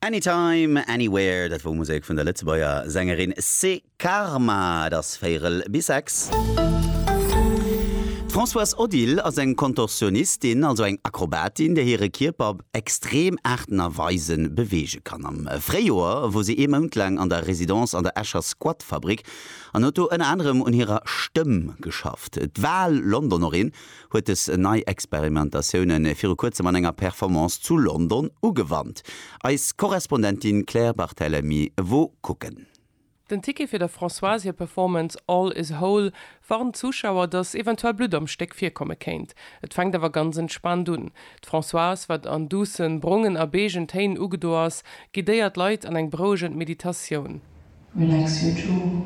Anytime, Anywhere, dat wor Musek vun der Lëtzebuerger Sängerin Cé Karma. Et ass véierel bis sechs. D'Françoise Odile ass eng Kontorsionistin, also eng Akrobatin, déi hire Kierper op extrem Aarten a Weise beweege kann. Am Fréijoer wor si ee Mount laang an der Residence an der Escher Squat-Fabrik an huet do ënner anerem un hirer Stëmm geschafft. D'Val Londonerin huet dës nei Experimentatioune viru kuerzem an enger Performance zu London ugewannt. Eis Korrespondentin Claire Barthelemy wou kucken. Den Ticket fir der Françoise hir Performance All is whole warnt d'Zuschauer, datt eventuell Blutt am Stéck virkomme kéint. Et fänkt awer ganz entspaant un. D'Françoise, wat an duussen, brongen a beegen Téin ugedo ass, guidéiert d'Leit an eng berouegend Meditatioun. Relax your jaw.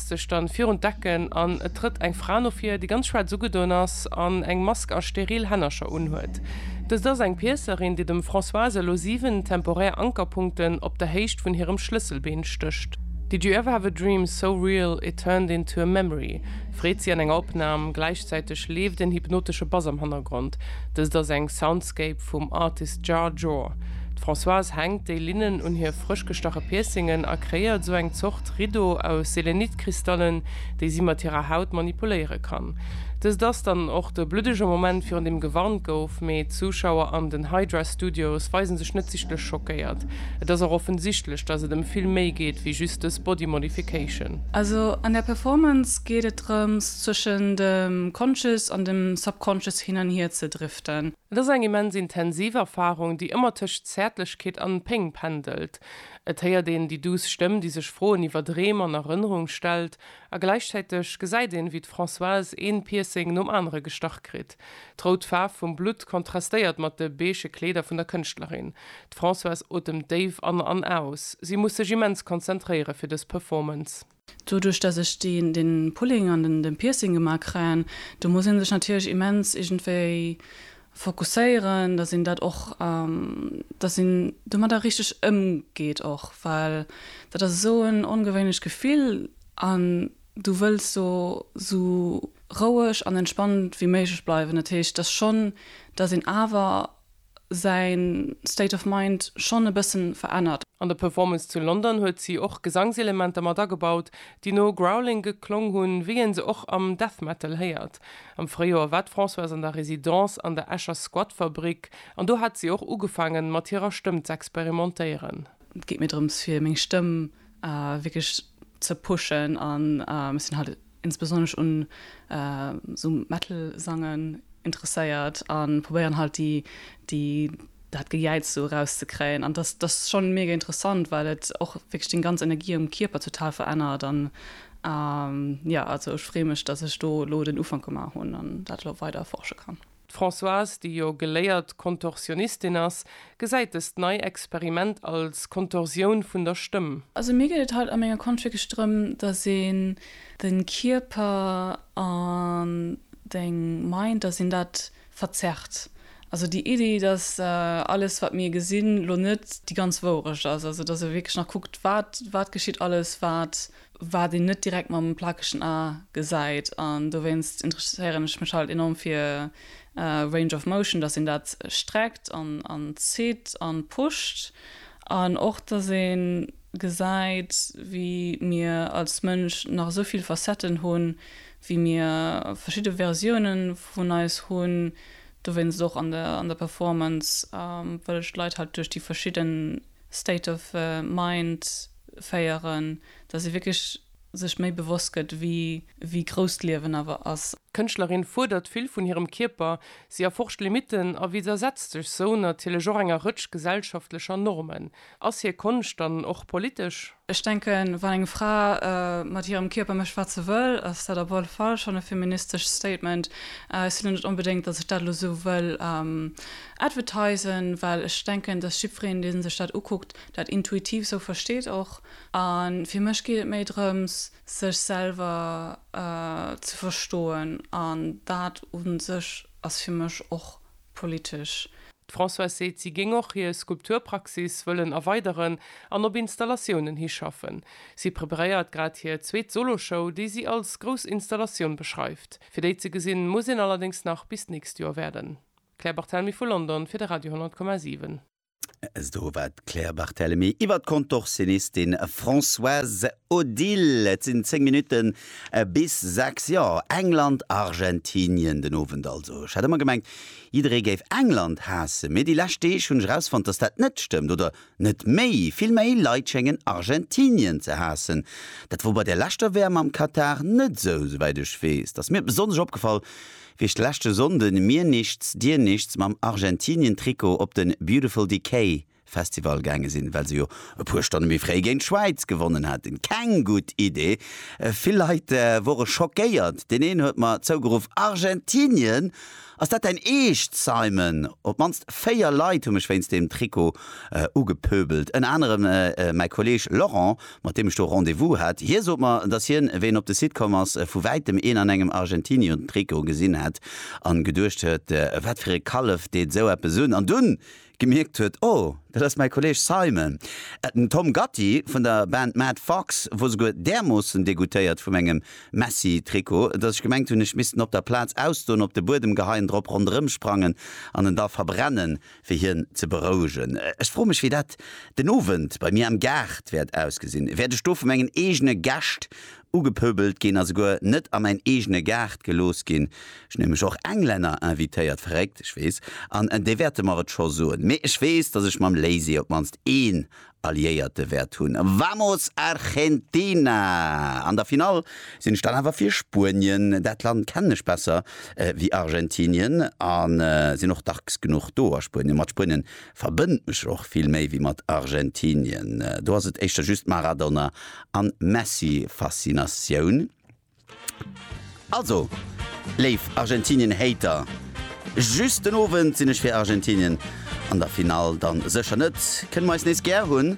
sech dann virun d'Decken an et trëtt eng Fra no vir, déi ganz schwaarz ugedoen ass an eng Mask a steril Hännercher unhuet. Dëst ass eng Piëcerin, déi dem Françoise elo 7 temporär Ankerpunkten op der Héicht vun hirem Schlësselbeen stécht. Did you ever have a dream so real it turned into a memory? freet si an enger Opnam. Gläichzäiteg leeft en hypnotesche Bass am Hannergrond. Dëst ass eng Soundscape, Sculpt vum Artist Jar Jor. D'Françoise hänkt déi Linnen un hir frësch gestache Piercingen a kreéiert esou eng Zort Riddo aus Selenit-Kristallen, déi si mat hirer Haut manipuléiere kann. Dëst ass dann och de bluddege Moment virun deem gewarnt gouf, mee d'Zuschauer an den Hydra Studios weise sech net sichtlech schockéiert. Et ass och offensichtlech, dass et ëm vill méi geet wéi just dës Body Modification. Also an der Performance geet et drëms, zwëschen dem Conscious an dem Subconscious hin an hier ze driften. Et ass eng immens intensiv Erfarung, déi ëmmer tëscht Zäertlechkeet an Péng pendelt. Et héiert een déi duuss Stëmm, déi sech Froen iwwer Dreem an Erënnerung stellt, a gläichzäiteg gesäit een, wéi d'Françoise een Piercing nom anere gestach kritt. D'rout Faarf vum Blutt kontrastéiert mat de beige Kleeder vun der Kënschtlerin. D'Françoise otemt déif an an aus. Si muss sech immens konzentréiere fir dës Performance. Doduerch dass ech deen den Pulling an den den Piercing gemaa kréien, do muss een sech natierlech immens iergendwéi fokusséieren, dass een dat och, dass een domadder richteg ëmgeet och, well dat ass esou en ongewéinlecht Gefill an du wëlls do esou roueg an entspannt wéi méiglech bleiwen. Dat heescht, dass schonn, dass een awer säin State of Mind schonn e bëssen verännert. An der Performance zu London huet si och Gesangselementer mat agebaut, déi no Growling geklong hunn, wéi een se och am Death Metal héiert. Am Fréijoer war d'Françoise an der Residence an der Escher Squatfabrik an do hat si och ugefaangen, mat hirer Stëmm z'experimentéieren. Et geet mir drëms, fir meng Stëmm wierklech ze pushen an ech sinn halt e. insbesonnesch un esou Metal Sangen interesséiert an probéieren halt déi déi dat Gejäiz esou eraus ze kréien an dass dass schon mega interessant well et och wierklech deng ganz Energie am Kierper total verännert an jo also ech freeë mech dass ech do elo den Ufank gemaach hunn an dat elo weider erforsche kann. D'Françoise, déi jo geléiert Kontorsionistin ass, gesäit dëst nei Experiment als Kontorsioun vun der Stëmm. Also mir geet et haut a menger Konsch wierklech drëm, dass een de Kierper an deng Mind, dass een dat verzerrt. Also déi Iddi, dass alles wat mir gesinn, lo net déi ganz Wourecht ass. Also dass e wierklech nach kuckt, wat, wat geschitt alles, wat wat een net direkt mam plakegen A gesäit an dowéinst interesséieren ech mech halt enorm fir Range of Motion, dass een dat streckt an zitt an pusht an och dass een gesäit wéi mir als Mënsch nach esou vill Facetten hunn, wéi mir verschidde Versiounen vun eis hunn. Dowéinst och an der Performance wëll ech d'Leit halt duerch déi verschidden. State of Mind féieren, dass ee wierklech sech méi bewosst gëtt, wéi grouss d'Liewen awer ass. D'Kënschtlerin fuerdert vill vun hirem Kierper, si erforscht Limitten a widdersetzt sech sou natierlech och enger Rëtsch gesellschaftlecher Normen. Ass hir Konscht dann och politesch? Ech denken, wann eng Fra mat hirem Kierper mécht, wat se wëll, ass dat op alle Fall schonn e feministescht Statement. Ech si lo net onbedéngt, datt ech dat lo esou wëll advertisen, well ech denken, datt jiddwereen, dee sech dat ukuckt, dat intuitiv esou versteet och. A fir mech geet et méi drëms, sech selwer ze verstoen, an dat u sech ass fir mech och politesch. D'Françoise seet, si géing och hir Skulpturpraxis wëllen erweideren an op Installatiounen hischaffen. Si preparéiert grad hir zweet Solo-Show, déi si als grouss Installatioun beschreift. Fir déi ze gesinn, muss een allerdéngs nach bis d'nächst Joer waarden. Claire Barthelmy vu London fir de Radio 10,7. Esou war d'Claire Barthelemy iwwer d'Kontorsionistin Françoise Odile. Et sinn 10 Minutten bis 6. Jo, England, Argentinien den Owend also. Ech hat ëmmer gemengt, jidderee géif England haassen, mee déi lescht Deeg hunn ech erausfonnt, dass dat net stëmmt, oder net méi, vill méi Leit schéngen Argentinien ze haassen. Dat wor bei der leschter WM am Katar net esou, souwäit ech weess. Dass mir besonnesch opgefall, Wéi ech leschte Sonnden Mir Nichts, Dir Nichts mam Argentinien-Trikot op den Beautiful Decay Festival gaange sinn, well se jo e puer Stonne méi fréi géint d'Schwäiz gewonnen haten. Keng gutt Idee. Vill Leit wore schockéiert. Deen een huet mer zougeruff, Argentinien? Ass dat däin Eescht, Simon? Op d'mannst véier Leit hu mech wéinst deem Trikot ugepöbelt. Ënner anerem mäi Kolleeg Laurent mat deem ech do Rendez-vous hat, hie sot mer, dass hien, wéi en op de Site komm ass, vu wäitem een an engem Argentinion-Trikot gesinn hätt a geduecht huet, wat fir e Kallef deet esou eppes un, an dunn gemierkt huet, oh, dat ass mäi Kolleeg Simon, den Tom Gatti vun der Band Mad Fox, wor souguer därmoossen degoutéiert vu mengem Messi-Trikot, dass ech gemengt hunn, ech misst en op der Plaz ausdoen, op de Buedem geheien, drop ronderëmsprangen an en da verbrennen. fir hien ze berouegen. Ech froe mech, wéi dat den Owend bei mir am Gaart wäert ausgesinn. Wäert ech do vu mengen eegene Gäscht ugepöbelt ginn a souguer net a mäin eegene Gaart gelooss ginn? Ech hunn nämlech och Englänner invitéiert, verréckt, ech weess, an déi wäerte mer et scho soen. Mee ech weess, datt ech mam Lazy op d'mannst een Alliéierte wäert hunn. Vamos Argentina! An der Finall sinn ech dann awer fir Spuenien. Dat Land kennen ech besser wéi Argentinien a sinn och dacks genuch do a Spuenien. Mat Spuenien verbënnt mech och vill méi wéi mat Argentinien. Do ass et éischter just d'Maradona an Messi-Faszinatioun. Also, léif Argentinien-Hater, just den Owend sinn ech fir Argentinien, an der Finall dann sécher net. Kënne mer eis nees gär hunn.